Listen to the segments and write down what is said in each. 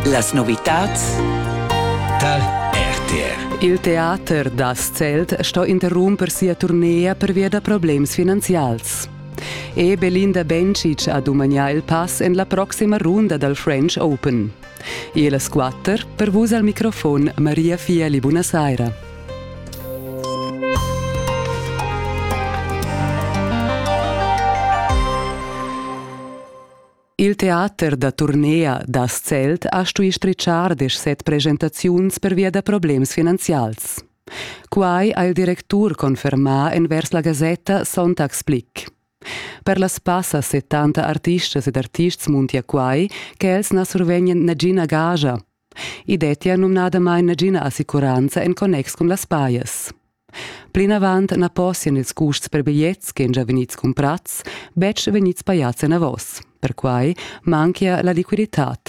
Las novitads dal RTR. Il teater da Zelt sto interrumper sia turnea pervia da problems finanzials. E Belinda Bencic ha dumagnà il pass en la proxima runda dal French Open. E las quatter, per vus al microfon Maria Fieli, buonasera. Il teater da turnea da Zelt ha stui stritschar deschset presentaziuns pervia da problems finanzials. Quai ha il directur confermà envers la gasetta Sonntagsblick. Per las passa 70 artistas ed artists muntia quai che els na survegnan nagina gaja. I dettia numnadamain nagina assicuranza en connex cun las pajas. Plinavant na possian ils custs per bigliets che già vegnids cumprads betg vegnids pajads enavos. Perquai manchia la liquiditad.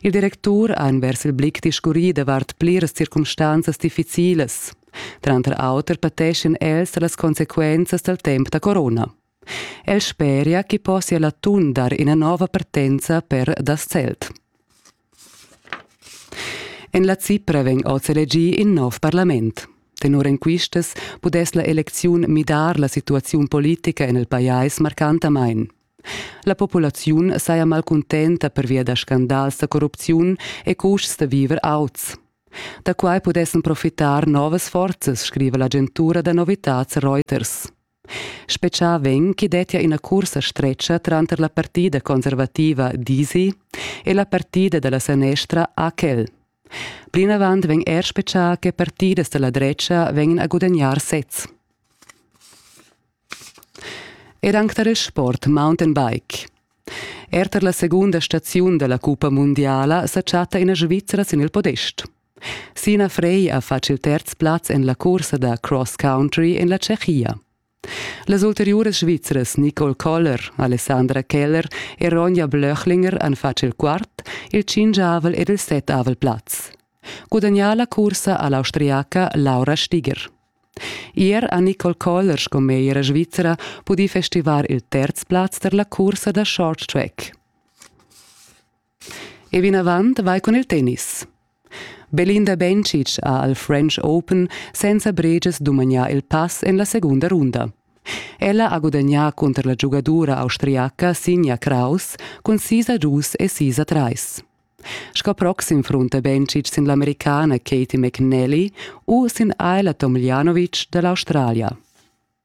Il directur ha envers il blick discurrì davart pliras circumstanzas difficilas. Tranter auter pateschien els da las consequenzas dal temp da corona. El speria chi possia l'atun dar ina nova partenza per das Zelt. En la Cipra vegn oz elegì in nov parlament. Tenor enquistas pudess la elecziun midar la situaziun politica en il pajais marcantamain. La populaziun saja malcuntenta pervia da scandals da corrupziun e custs da viver auts. Da quai pudessan profitar novas forzas, scriva l'agentura da novitads Reuters. Spetgà vegn ch'i dettia ina cursa stretga tranter la partida conservativa d'Isi e la partida da la sanestra AKEL. Plinavant vegn er spetgà che partidas da la drecha vegnan a gudagnar sez. Ed anc tar il sport mountainbike. Er tar la segunda staziun da la cuppa mundiala sa chatta ina Svizra sin il podest. Sina Frey ha fatg il terz plaz en la cursa da cross country en la Tschechia. Las ulteriuras svizras Nicole Koller, Alessandra Keller e Ronja Blöchlinger han fatg il quart, il cingiavel ed il settavel plaz. Gudagnà la cursa ha l'austriaca Laura Stiger. Ier ha Nicole Koller sco meglra svizra pudì festivar il terz plaz per la cursa da short track. E vinavant vai cun il tennis. Belinda Bencic ha al French Open senza bregias dumagnà il pass en la segunda runda. Ella ha gudagnà cunter la giugadura austriaca Sinja Kraus cun sis a dus e sis a trais. Sco proxim frunta Bencic sin l'Americana Katie McNally u sin Ayla Tomljanovic da l'Australia.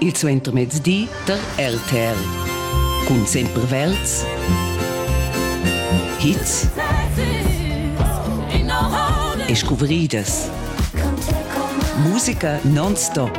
il suentermezdi tar RTL. Cun sempre Welts. Hits e scuvridas. Musica non-stop.